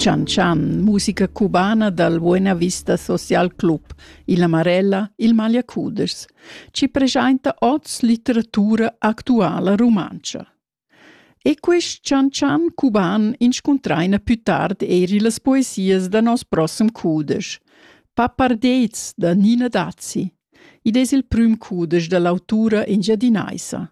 Chan Chan, musica cubana dal Buena Vista Social Club, il Amarella, il Magliacudes, ci presenta oz litteratura actuala rumantscha. E quest Chan Chan cuban inscuntraina più tard eri las poesias da nos prossem cudesch, Pappardets da Nina Dazzi. Id es il prüm cudesch da l'autura engiadinaisa.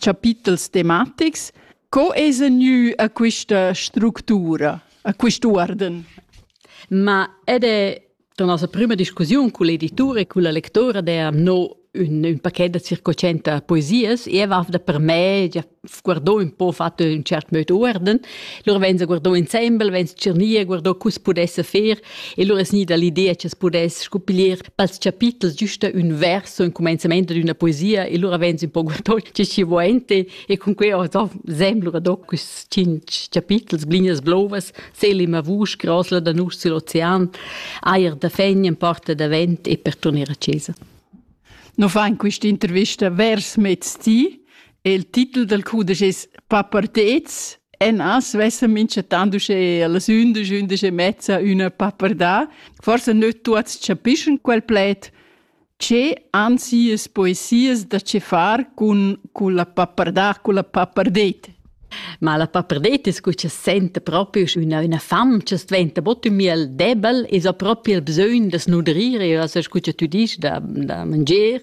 chapitels tematics. Co es gnü a quista structura, a quist uorden? Ma ed è la nostra prima discussione con l'editore e con la lectora der no un, un paquet da circocenta poesias e va da per me già guardò un po fatto in cert modo uorden loro venza guardò ensemble venza cirnia guardò cus pudesse fer E lura es gnida l'idea cha's pudess scuppiglier pels chapitels güsta ün verso, ün cumainzamaint d'üna poesia e lura vegns ün po guardond che chi vo ainte e cun quei ho do sem lura do quist tschinch chapitels, blinas blovas, selim a vusch, grosla da nus sül ocean, ajer da fegn in porta da vent e per turner a chesa. No fa in questa intervista vers mezdi Il titel dal cudesch es Papartets. En as vessa minchatant uschè a las undisch, undisch e mezza üna papardà. Forsa nöt tuots chapischan quel pled. Che han sias poesias da che far cun, cun la papardà, cun la papardet? Ma la papardet es que cha senta propi üna, üna fam cha sventa bod ün miel debel e so propi il bsögn da snudrir e as scu cha tü disch da, da mangier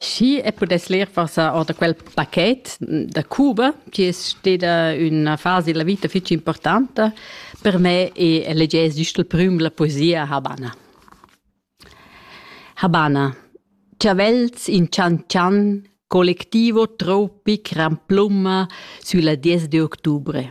Schi e pudess ler forsa or da quel paquet da Cuba, chi es steda üna fasa illa vita fich importanta per me e legess güst il prüm la poesia Habana. Habana. Ciavels in cian-cian, colectivo tropic ramplumma sülla 10 de octubre.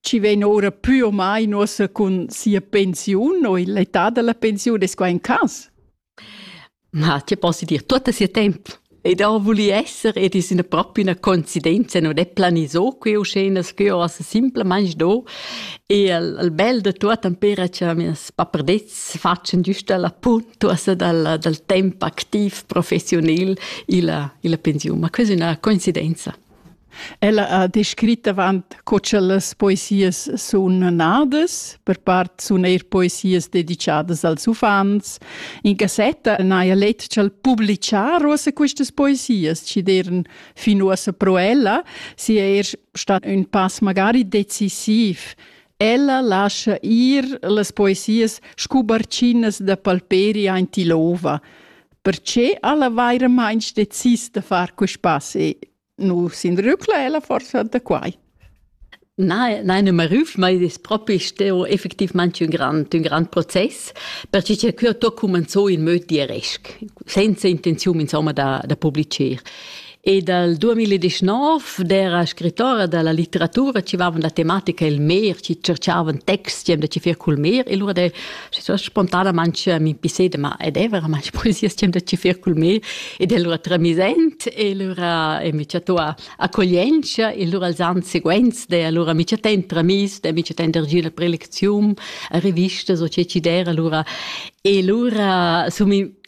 chi vegn ora pü o mai nossa cun sia pensiun o l'età da la pensiun, es quai un cas? Na, ti posso dir tutto sia tempo. Ed ho voli esser ed es üna propi üna coincidenza, non è planiso que uscenas, que ho simplemente do. E il, il bel de tutto empera che mes papardets faccian giusta la puntuosa dal, dal tempo activ professionil illa, illa pensiun, ma questa è una coincidenza. Ella ha descrit avant co cha las poesias sun nadas, per part sun eir poesias dedichadas als uffants. In cassetta n'haja let cha'l publichar uossa quistas poesias, chi d'eiran fin uossa pro ella, sia eir stat ün pass magari decisiv. Ella lascha ir las poesias scu barchinas da palperi aint ill'ouva. Perché ella vairamaing decis da far quist pass e nu s'inrücla ella forsa da quai? Nein, nein, nicht mehr auf. Man das Prop ist ja effektivamente ein grand, ein grand Prozess, perché que hat da commenzar in möd di aresc, senza intenzione, insomma, da, da publicare. E dal 2019 d'era scrittora dalla litteratura ci vavan da tematica il mer, ci cercavan texti da ci fer cul mer e lura de so spontanamente mi pisede ma ed è veramente poesia stem da ci fer cul mer ed è lura tramisent e lura e mi chatto accoglienza e lura els ans seguents de lura mi chatten tramis de mi chatten der gina prelezium a rivista so ce ci dera lura e lura so mi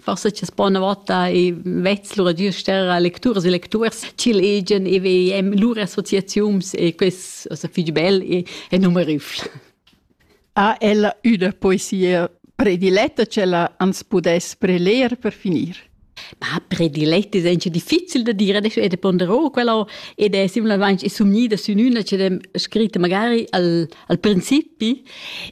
forse c'è po una volta e vez lura gius terra lecturas e lecturs ch'il egen e vem lura associaziuns e quest also fich bel e, e numerifl. Ha ella üna poesia prediletta c'ella ans pudess preler per finir? Ma prediletta è anche difficile da dire, adesso è de ponderò quella ed è similmente somnida su una che è scritta magari al, al principi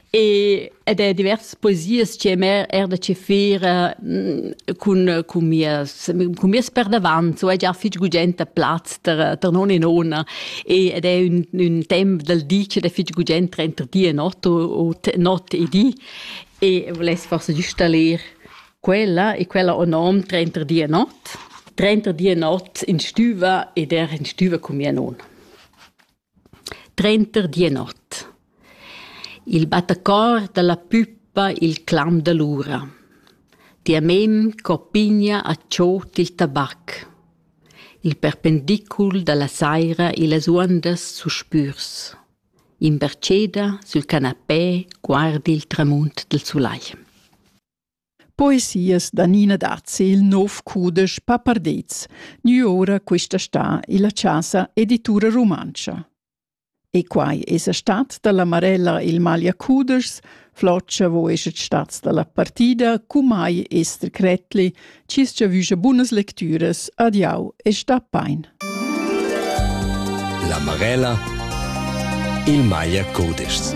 e ed è diversas poesias che mer er da chefir eh, cun cun mies cun mies per davant so è già fich gugent a plaz ter ter non e nona e ed è un un temp dal di che è fich gugent tra di e not o not e di e volesse forse installer quella e quella o non trenta di e not trenta di e not in stüva ed er in stüva con mia nona Trenter Dienot. Il battacor dalla puppa il clam dall'ura. Tia mem co pigna a tschot il tabac. Il perpendicul dalla saira e las uondas suspürs. Imbertscheda sül canapé guardi il tramunt del sulai. Poesias da Nina Dazzi il nov cudesch Papardets, gnü oura quista stà illa Chasa Editura Rumantscha. E quai esa stat da la Marella il maglia cudeschs, Floccia vo eschet stats da la partida, cumai Esther Kretli, cis giavüscha bunas lectüras, adiau e sta pain. La Marella il maglia cudeschs.